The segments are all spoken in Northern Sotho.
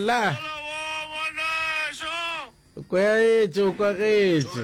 la kwaetše o kwagetše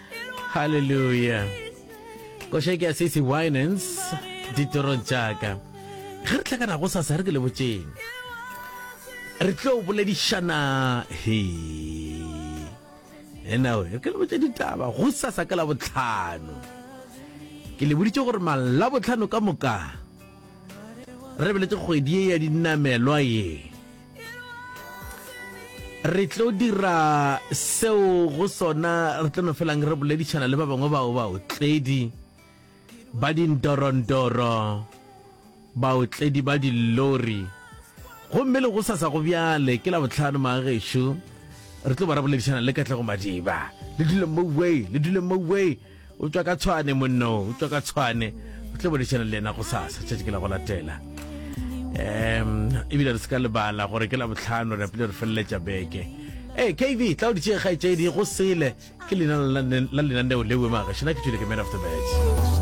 Hallelujah. Koša ke a sisi Winans ditorong tšaka. Ge re tlakana go sasa re ke le botšeng. Re tlo boledišana he. Ena we, re ke le botše ditaba go sasa ka la botlhano. Ke le boditše gore mala botlhano ka moka re beletse kgwedi ye ya dinamelwa ye. re tlo dira seo go sona re tlo no felang re boledišana le ba bangwe bao baotledi ba dindorondoro baotledi ba dillori gomme le go sasa go bjale ke la botlhano maagešo re tlo ba re boledišana le katlego madiba le dule moway le dule moway o tšwa ka tshwane monno o tšwa ka tshwane o tle bolešana le yena go sasa tšatši ke la go latela um ebile re se ka lebala gore ke la botlhano re apile re feleletša beke ee kv tla o ditšee kgaetšedi go sele ke lena la lenaneo leo magašina ke tšwile ke man of the match